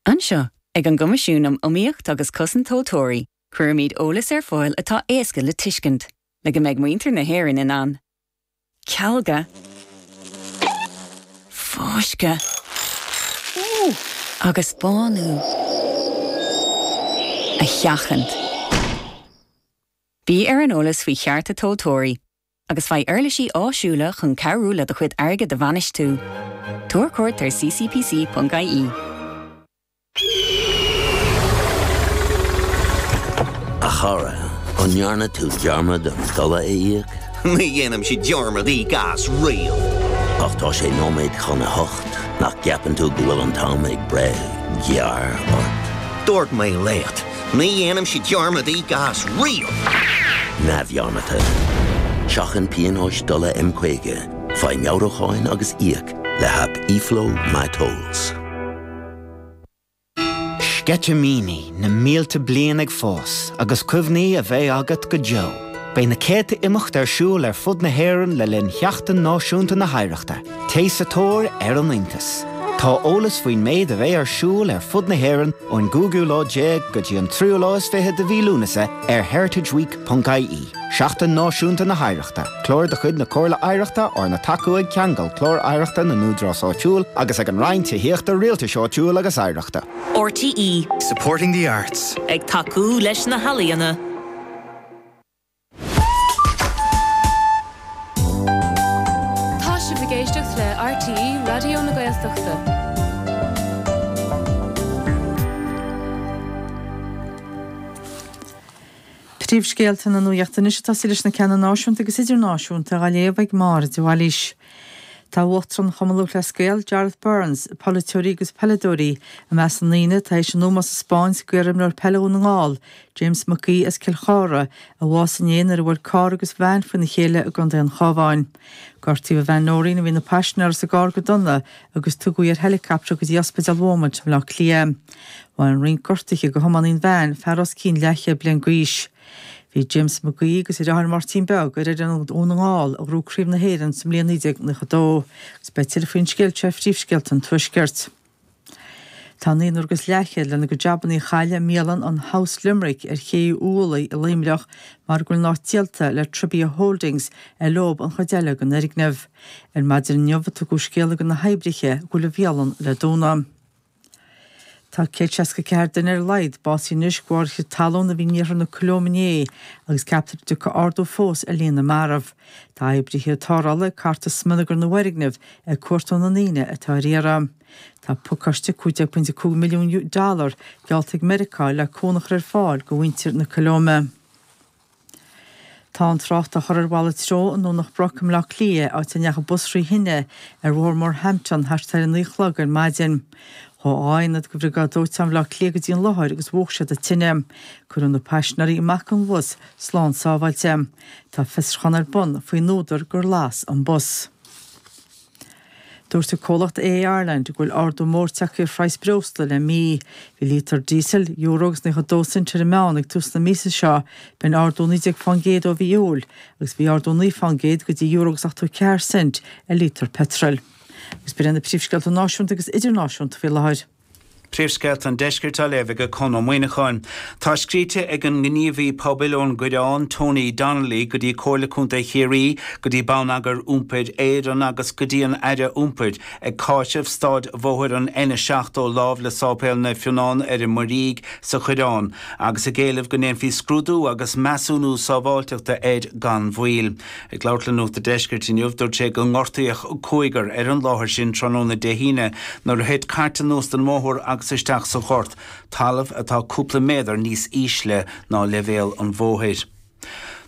Anseo, ag an gCoimisiún um Iomaíocht agus Cosaint Tomhaltóirí, cuirimid eolas ar fáil atá éasca le tuiscint, le go mbeidh muintir na hÉireann in ann cealgadh, fáisceadh agus bánú a sheachaint. Bí ar an eolas faoi chearta tomhaltóirí. agus faigh uirlisí áisiúla chun cabhrú le do chuid airgid a bhainistiú. Tabhair cuairt ar ccpc.ie. A chara, an ndearna tú dearmad an dola a íoc? Ní dhéanaimse dearmad i gcás riamh. Ach tá sé nóiméad chun a hocht, nach gceapann tú go bhfuil an t-am ag breith gearr ort? Dúirt mé leat. Ní dhéanaimse dearmad i gcás riamh! neamhdhearmadta. Seachain pionóis dola M50, faigh meabhrúcháin agus íoc le haip eFlow MyTolls. Sceitimíní na mílte bliain ag fás agus cuimhní a bheidh agat go deo. Beidh na céadta imeacht ar siúl ar fud na hÉireann le linn Sheachtain Náisiúnta na hOidhreachta. Téigh sa tóir ar an iontas. Tá eolas faoin méid a bheidh ar siúl ar fud na hÉireann ón gcúigiú lá déag go dtí an tríú lá is fiche de mhí Lúnasa ar heritageweek.ie. Seachtain Náisiúnta na hOidhreachta, Clár de chuid na Comhairle Oidhreachta arna tacú ag Ceangal Clár Oidhreachta na nÚdarás Áitiúil agus ag an Roinn Tithíochta Rialtais Áitiúil agus Oidhreachta. RTÉ. Supporting the arts. Ag tacú leis na healaíona. Tá sibh ag éisteacht le RTÉ Raidió na Gaeltachta. Príomhscéalta na Nuaíochta anois ag tosaí leis na ceanna náisiúnta agus idirnáisiúnta á léamh ag Máire de Bhailís. Tá uachtarán Chumann Lúthchleas Gael, Jarlath Burns, polaiteoirí agus peileadóirí, i measc na ndaoine atá théis a n-ómós a spáint go iarimreoir peile Dhún na nGall, James Mac Aoidh as Cill Chartha, a bhásaigh inné nuair a bhuail carr agus veain faoina chéile i gContae an Chabháin. Gortaíodh a bhean Noreen, a bhí ina paisinéara sa gcarr, go dona agus tugadh í ar heilicaptear go dtí Ospidéal Beaumont i mBleá Cliath. Bhain roinnt gortuithe go thiománaí an veain, fear os cionn leathchéad bliain g'aois. Bhí James Mac Aoidh agus a dheartháir Máirtín Beag ar fhoireann Dhún na nGall a ghnóthaigh Craobh na hÉireann sa mbliain 1992 agus beidh tuilleadh faoin scéal seo ar phríomhscéalta an Tuaiscirt. Tá naonúr agus leathchéad lena gcuid jabannaí a chailleadh i mbialann an House Limerick ar Ché Uí Uallaigh i Luimneach mar go bhfuil an áit díolta le Tribia Holdings ar leo an chuid eile den fhoirgneamh. Ar maidin inniu a tugadh scéala do na hoibrithe go bhfuil an bhialann le dúnadh. Tá 164 duine ar a laghad básaithe anois de bharr chrith talún a bhí in iarthar na Colóime inné agus ceaptar go dtiocfaidh ardú fós ar líon na marbh. Tá oibrithe tarrthála ag cartadh smionagar na bhfoirgneamh ag cuartú na ndaoine atá ar iarraidh. Tá pacáiste $15.5 milliún geallta ag Meiriceá le cúnamh a chur ar fáil go mhuintir na Colóime. Tá an trácht á chur ar mhalairt treo i nDomhnach Broc i mBleá Cliath, áit a ndeachaigh bus thrí thine ar Bhóthar Morehampton thart ar 9 a chlog ar maidin. Ghabh dhá aonad de Bhriogáid Dóiteáin Bhleá Cliath go dtí an láthair agus mhúch siad an tine. Cuireadh na paisinéirí amach den bhus slán sábháilte. Tá fiosruchán ar bun faoin údar gur las an bus. Dúirt an comhlacht AA Ireland go bhfuil ardú mór tagtha ar phraghas breosla le mí. Bhí líotar díosail, euro agus naocha dó cent ar an meán ag tús na míosa seo, b'in ardú naoi déag faoin gcéad ó mhí Iúil, agus bhí ardú naoi faoin gcéad go dtí euro agus ochtó ceathair cent ar líotar peitril. Agus b'in iad na príomhscéalta náisiúnta agus idirnáisiúnta faoi láthair. Príomhscéalta an Deiscirt á léamh ag Conn Ó Muíneacháin. Tá scríte ag an ngníomhaí pobail ón gCoireán, Tony Donnelly, go dtí Comhairle Contae Chiarraí, go dtí Bonneagar Iompair Éireann agus go dtí an Aire Iompair, ag cáiseamh stáid bhóthair an N70 lámh le Sáipéal Naomh Fionán ar an Muirígh sa Choireán, agus ag éileamh go ndéanfaí scrúdú agus measúnú sábháilteachta air gan mhoill. Ag labhairt le Nuacht a' Deiscirt inniu, dúirt sé go ngortaíodh cúigear ar an láthair sin tráthnóna Dé hAoine nuair a thit cairt anuas den mbóthar agus isteach sa ghort, talamh atá cúpla méadar níos ísle ná leibhéal an bhóthair.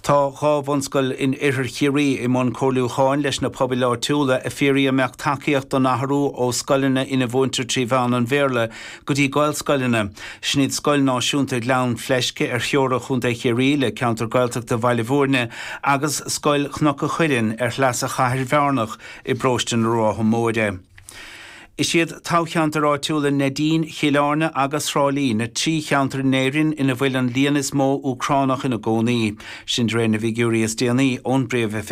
Tá dhá bhunscoil in Oirthear Chiarraí i mbun comhairliúcháin leis na pobail áitiúla ag fiafraí an mbeadh tacaíocht don athrú ó scoileanna ina mhúintear trí mheán an Bhéarla go dtí Gaelscoileanna. Sin iad Scoil Náisiúnta Ghleann Fleisce ar theora Chontae Chiarraí le ceantar Gaeltachta Bhaile Bhúirne agus Scoil Chnoc a' Chuilinn ar shleasa Chathair Bhearnach i bParóiste na Rátha Móire. Is iad toghcheantair áitiúla Neidín, Chill Airne agus Thrá Lí na trí cheantar in Éirinn ina bhfuil an líon is mó Úcránach ina gcónaí, sin de réir na bhfigiúirí is déanaí ón bPríomhoifig.